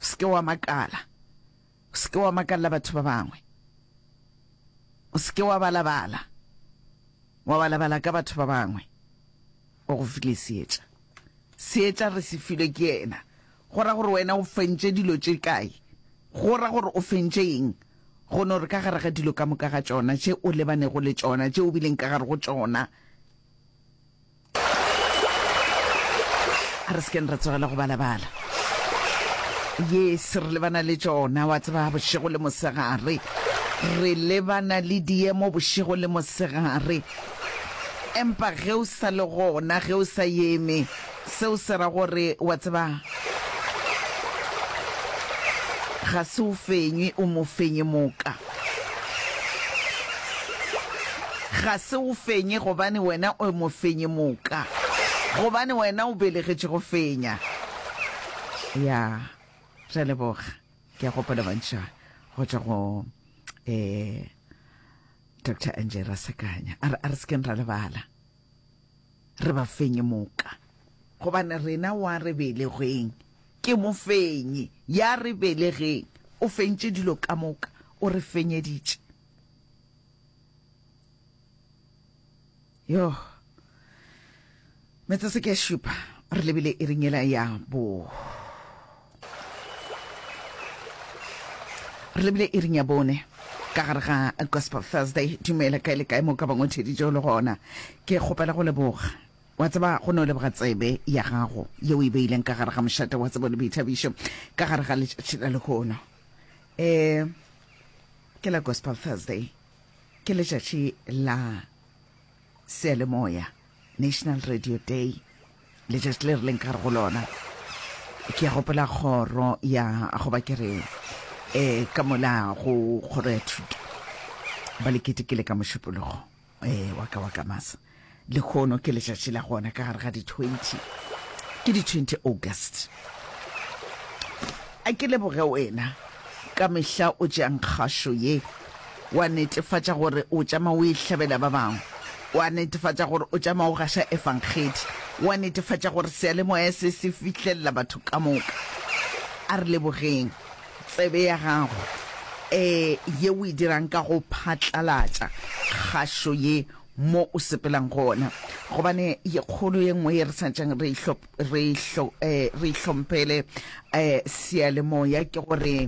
O se ke wa makala. O se ke wa makalela batho ba bangwe. O se ke wa balabala, wa balabala ka batho ba bangwe. O go file seetša. Seetša re se filwe ke yena. Go ra gore wena o fentše dilo tše kae? Go ra gore o fentše eng? Go no re ka gare ga dilo ka moka ga tšona tše o lebanego le tšona, tše o bileng ka gare go tšona, a re sekeng ra tsogela go balabala yes re lebana le tšona wa tseba bošego le mosegare re lebana le diemo bošego le mosegare empa ge o sa le gona ge o sa yeme seo se ra gore wa tseba ga se o fenywe o mo fenye moka Ga se o fenye gobane wena o mofenyi moka, gobane wena o belegetše go fenya. Ya, re a leboga. Ke a gopola mantšu a go tšwa go um Doctor Angie Rasakanya, a re, a re se keng ra lebala. re ba fenye moka. Gobane rena wa re belegweng ke mofenyi, ya re belegeng o fentše dilo ka moka, o re fenyeditše. Yoh. Metsotso ke ya šupa, re lebile iring yela ya bo. Re bile iring ya bone ka gare ga Gospel Thursday. Dumela kae le kae mo ka bangwetšeditšeo le gona. Ke kgopela go leboga. Wa tseba go no leboga tsebe ya gago yeo e beileng ka gare ga mošate wa tsebo le boithabišo ka gare ga letšatši la lehono. E ke la Gospel Thursday. Ke letšatši la Seyalemoya, National Radio Day, letšatši le re leng ka re go lona. Ke ya gopola kgoro ya goba ke re um ka mola go kgoro ya thuto ba le ketekele ka mošupologo um wa ka wa ka masa le kgono ke letšatši la gona ka gare ga di-twenty ke di-twenty august A ke leboge wena ka mehla o tšeang kgašo ye, wa netefatša gore o tšama o e hlabela ba bangwe, wa netefatša gore o tšama o gaša Efangedi, wa netefatša gore seyalemoya se se fihlelela batho ka moka. A re lebogeng tsebe ya gago e ye o e dirang ka go phatlalatša kgašo ye mo o sepelang gona, gobane ye kgolo ye nngwe ye re santšang re e re ihlo eh re ihlomphele eh sealemoya ke gore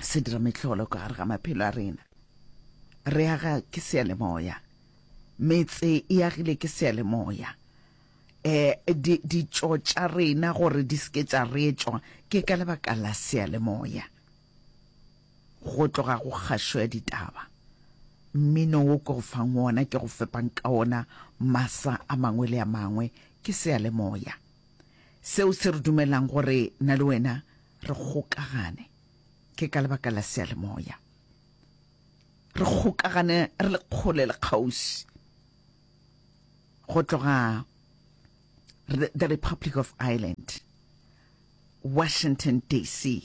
se dira mehlolo ka gare ga maphelo a rena re aga ke sealemoya metse e agile ke sealemoya eh di di tša rena gore di seke tša retswa ke ka lebaka la sealemoya Go tloga go kgašo ya ditaba, mmino wo ke go fang wona, ke go fepang ka wona masa a mangwe le a mangwe, ke seyalemoya seo se re dumelang gore na le wena re kgokagane. Ke ka lebaka la seyalemoya re kgokagane re le kgole le kgauswi. Go tloga the Republic of Ireland, Washington DC,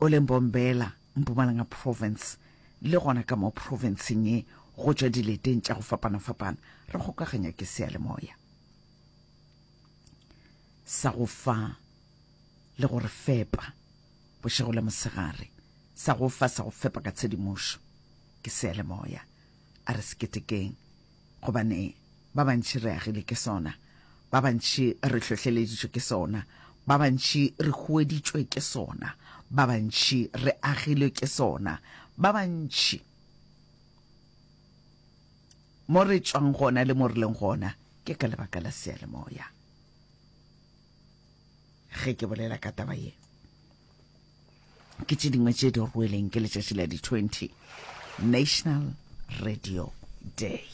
o leng Mbombela, Mpumalanga Province, le gona ka mo profenseng ye go tšwa dileteng tša go fapana-fapana re kgokaganya ke seyalemoya sa go fa le go re fepa bošego le mosegare sa go fa sa go fepa ka tshedimošo ke seyalemoya a re seketekeng gobane ba bantši re agile ke sona, ba bantši re hlohleleditšwe ke sona, ba bantši re hueditšwe ke sona, ba bantši re agilwe ke sona, ba bantši mo re tšwang gona le mo re leng gona ke ka lebaka la seyalemoya. ge ke bolela ka taba ye ke tše dingwe tše di rweleng ke letšatši la di-20 national radio day